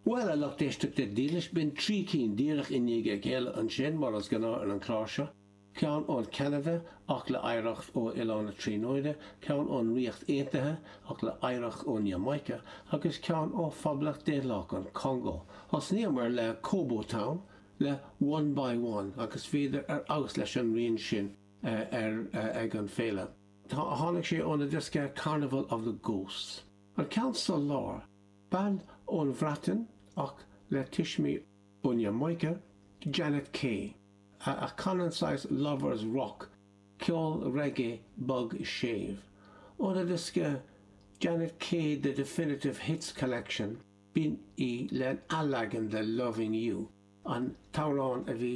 Bhuel a lucht éisteachta dílis b'in trí cinn díreach i ndiaidh a chéile ansin, mar is gnáth ar an chlár seo, ceann ón Cheanada ach le hoidhreacht ó Oileán na Tríonóide, ceann ón Ríocht Aontaithe ach le hoidhreacht ón Iamáice, agus ceann ó Phoblacht Daonlathach an Chongó. Thosnaíomar le 'Kobo Town' le One by One agus bhíodar ar fheabhas leis an rian sin ar ag an Féile. Tháinig sé óna diosca Carnival of the Ghosts. An ceann sa lár. Bean ón Bhreatain ach le tuismí ón Iamáice, Janet Kay, a a chanann saghas lovers rock, ceol reggae bog séimh. Óna diosca Janet Kay The Definitive Hits Collection b'in í lena leagan de Loving You, an t-amhrán a bhí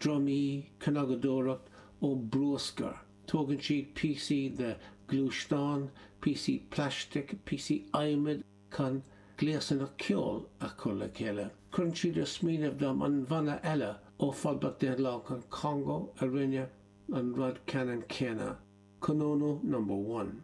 drumaí, cnagadóireacht, ó bruascar. Tógann siad píosaí de ghluaisteáin, píosaí plaistic, píosaí adhmaid chun gléasanna ceoil a chur le chéile. Cuireann siad ar smaoineamh dom an bhanna eile ó Phoblacht Dhaonlathach an Chongó a rinne an rud ceannann céanna, Konono Number One.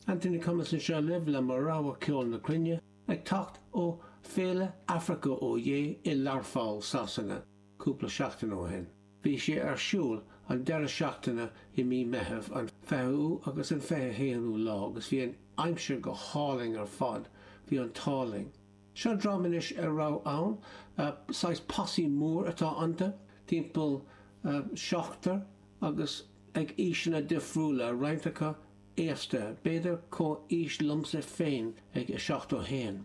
Anthony Cummins anseo libh le mo rogha ceoil na cruinne, ag teacht ó Féile Africa Oyé i Learpholl, Sasana. cúpla seachtain ó shin. Bhí sé ar siúl an deireadh seachtaine i mí Meithimh, an 20ú agus an 21ú lá, agus bhí an aimsir go hálainn ar fad, bhí an t-ádh linn. Seo dream anois a raibh ann, saghas posse mór atá iontu, timpeall seachtar agus ag aoiseanna difriúla, roinnt acu aosta, b'fhéidir comhaois liomsa féin ag 71.